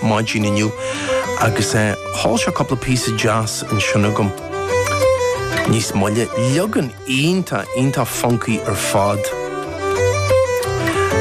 maidin inniu agus sheol sé cúpla píosa deas ansin agam. Níos moille, leagan iontach, iontach funcaí ar fad.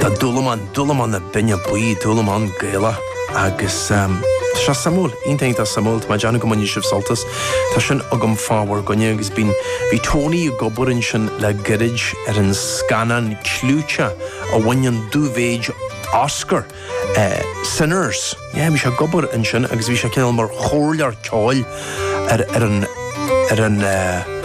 de Dúlamán, dúlamán na binne buí, dúlamán Gaelach agus seo suimiúil, iontach, iontach suimiúil. Tá mé ag déanamh go mbainfidh sibh sult as. Tá sin agam fá bhur gcoinne agus bíonn, bhí Tony ag obair ansin le gairid ar an scannán clúiteach a bhain an dúmhéid Oscar. Sinners. Yeah, bhí sé ag obair ansin agus bhí sé cineál mar chomhairleoir ceoil ar, ar an, ar an eh,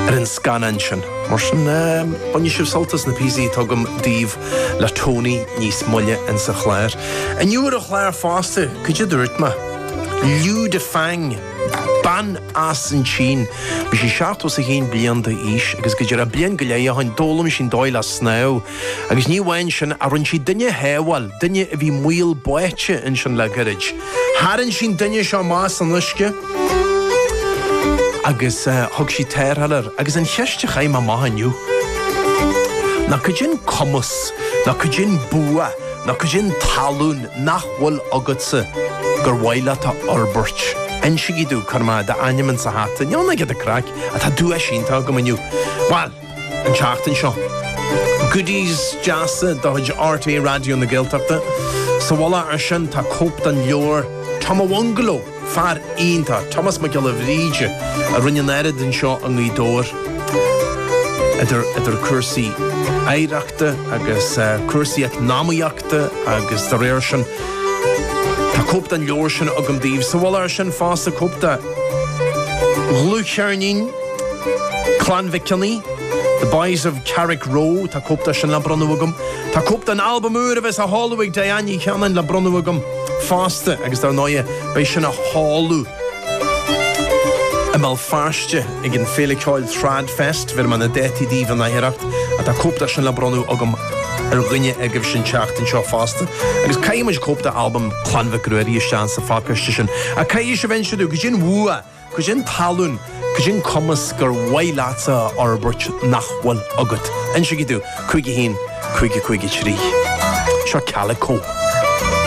ar an scannán sin. Mar sin, eh, bainfidh sibh sult as na píosaí atá agam daoibh le Tony níos moille ins an chlár. Inniu ar an chlár fosta, cad é a dúirt mé, Lü Difang, bean as an tSín. Bhí sí seachtó is a haon bliain d'aois agus go díreach bliain go leith ó shin d'fhoghlaim sí an dóigh le snámh, Agus ní amháin sin, ach rinne siad duine a shábháil, duine a bhí i mbaol báite ansin le gairid. Tharraing siad an duine seo amach as an uisce agus thug siad tarrtháil air. Agus an cheist a chaithim amach inniu ná cad é an cumas, nó cad é an bua, nó cad é an tallann nach bhfuil agatsa gur mhaith leat a fhorbairt? Insigí domh, cuirfidh mé d'ainm insa hata. Ní amháin ag do craic, ach tá duais iontach agam inniu. Bhuel! an tseachtain seo. Goodies deasa de chuid RTÉ Raidió na Gaeltachta. Sa mhullach ar sin tá cóip den leabhar Tom a Bhungalow! Fear iontach, Tomás Mac Giolla Bhríde, a rinne an oiread anseo i nGaoth Dobhair, idir cúrsaí oidhreachta agus cúrsaí eacnamaíochta agus dá réir sin. Tá cóip den leabhar sin agam daoibh. Sa mhullach ar sin fosta, cóip de dhlúthcheirnín. Clann Mhic Cionnaith, The Boys of Carrickroe, tá cóip de sin le bronnadh agam. Tá cóip den albam úr a bheas á sheoladh ag Diane Ní Chanáin le bronnadh agam fosta agus dár ndóighe beidh sin á sheoladh i mBéal Feirste ag an Féile Ceoil TradFest, bheirim na dátaí daoibh in aichearracht, ach tá cóip de sin le bronnadh agam ar dhuine agaibhse an tseachtain seo fosta. Agus caithfidh muid cóip d'albam Chlann Mhic Ruairí isteach sa phacáiste sin. Ach caithfidh sibh inse domh, cad é an bua! Cad é an tallann, cad é an cumas gur mhaith leatsa a fhorbairt nach bhfuil agat. Insigí domh! 51 50 53 Seo Calico.